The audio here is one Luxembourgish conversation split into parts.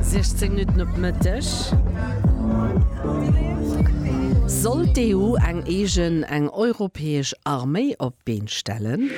16 Minutten op Mëtteg. Soll d'EU eng eegen, eng europäesch Arméi op d'Been stellen?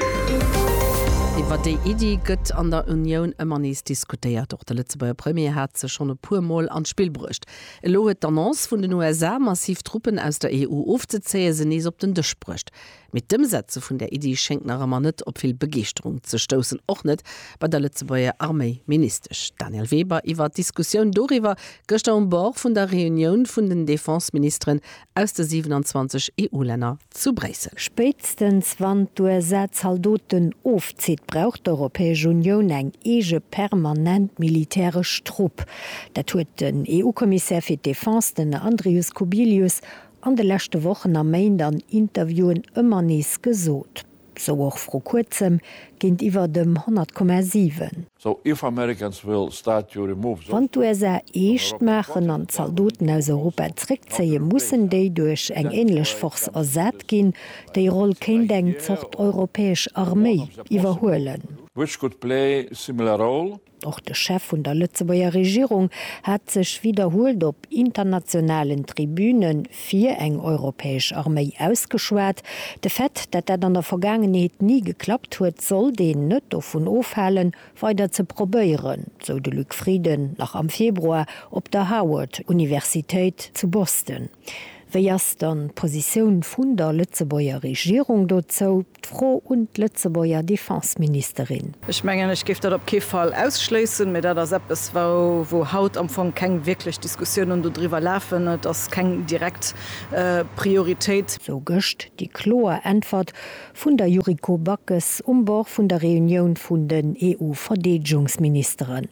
Iwwer déi Iddi gëtt an der Unioun ëmmer nees diskutéiert. Och de Lëtzebuerger Premier hat se schonn e puer Mol an d'Spill bruecht. Elo huet d'Annonce vun den USA, massiv Truppen aus der EU ofzezéien, se nees op den Dësch bruecht. Mee d'Ëmsetze vun där Iddi schéngt nach ëmmer net op vill Begeeschterung ze stoussen, och net bei der Lëtzebuerger Arméiministesch Danièle Weber iwwer d'Diskussioun doriwwer gëschter um Bord vun der Reunioun vun den Defenseministeren aus de 27 EU-Länner zu Bréissel. Spéitstens wann d'USA Zaldoten ofzitt, brauch d'Europäesch Unioun eng eege permanent militäresch Trupp. Dat huet den EU-Kommissär fir d'Defense, den Andrius Kubilius, an de leschte Wochen a Méint an Interviewen ëmmer nees gesot, sou och vru kuerzem géintiwwer dem 100 Komma 7. So if Americans will start to remove those troops from Europe, what will Russia do? Wann d'USA eescht maachen an d'Zaldoten aus Europa zréckzéien, mussen déi duerch eng änlech Force ersat ginn. Déi Roll kéint eng Zort europäesch Arméi iwwerhuelen. Which could play similar role. Och de Chef vun der Lëtzebuerger Regierung hat sech widderhuelt op internationalen Tribüne fir eng europäesch Arméi ausgeschwat. De Fait, dat dat an der Vergaangenheet ni geklappt huet, sollt een net dovun ofhalen, weider ze probéieren, sou de Luc Frieden nach am Februar op der Howard-Universitéit zu Boston. Wéi ass dann d'Positioun vun der Lëtzebuerger Regierung dozou? D'Fro un d'Lëtzebuerger Defenseministerin. Ech mengen, ech géif dat op kee Fall ausschléissen, mä dat ass eppes, wou haut am Fong keng wierklech Diskussiounen dodriwwer lafen. Et ass keng direkt Prioritéit. Sou gëscht déi kloer Äntwert vun der Yuriko Backes um Bord vun der Reunioun vun den EU-Verdeedegungsministeren.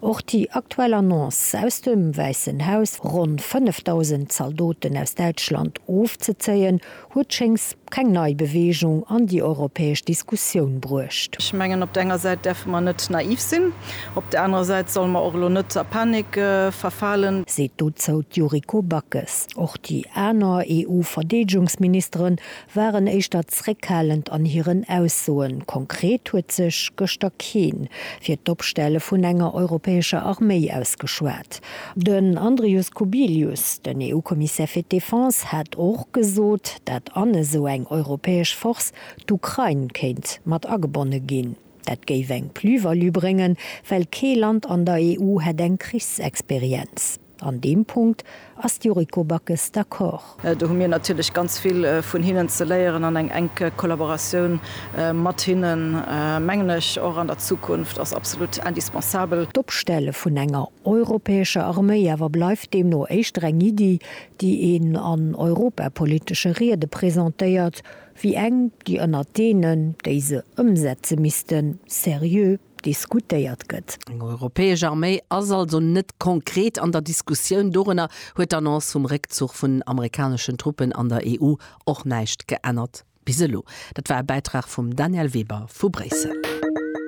Och déi aktuell Annonce aus dem Wäissen Haus, ronn 5.000 Zaldoten aus Däitschland ofzezéien, huet schéngs keng nei Beweegung an déi europäesch Diskussioun bruecht. Ech mengen, op der enger Säit däerfe mer net naiv sinn, op der anerer Säit solle mer och elo net a Panik verfalen. Seet dozou d'Yuriko Backes. Och déi aner EU-Verdeedegungsministeren waren éischter zréckhalend an hiren Aussoen. Konkret huet sech gëschter keen fir d'Opstelle vun enger europäescher Arméi ausgeschwat. Den Andrius Kubilius, den EU-Kommissär fir d'Defense, hat och gesot, dat an esou eng europäesch Force d'Ukrain kéint mat agebonne ginn. Dat géif eng Plus-value bréngen, well kee Land an der EU hätt eng Krichsexperienz. An deem Punkt ass d'Yuriko Backes d'accord. Do hu mir natierlech ganz vill vun hinnen ze léieren an eng enk Kollaboratioun mat hinnen, mengen ech, och an der Zukunft ass absolut indispensabel. D'Opstelle vun enger europäescher Arméi awer bleift deemno éischter eng Iddi, déi een an europapolitesche Riede presentéiert, wéi eng, déi ënnert deenen, déi se ëmsetze missten, seriö diskutéiert gëtt. Eng europäesch Arméi ass also net konkret an der Diskussioun. Dorunner huet d'Annonce vum Réckzuch vun amerikaneschen Truppen an der EU och näischt geännert bis elo. Dat war e Bäitrag vum Danièle Weber vu Bréissel.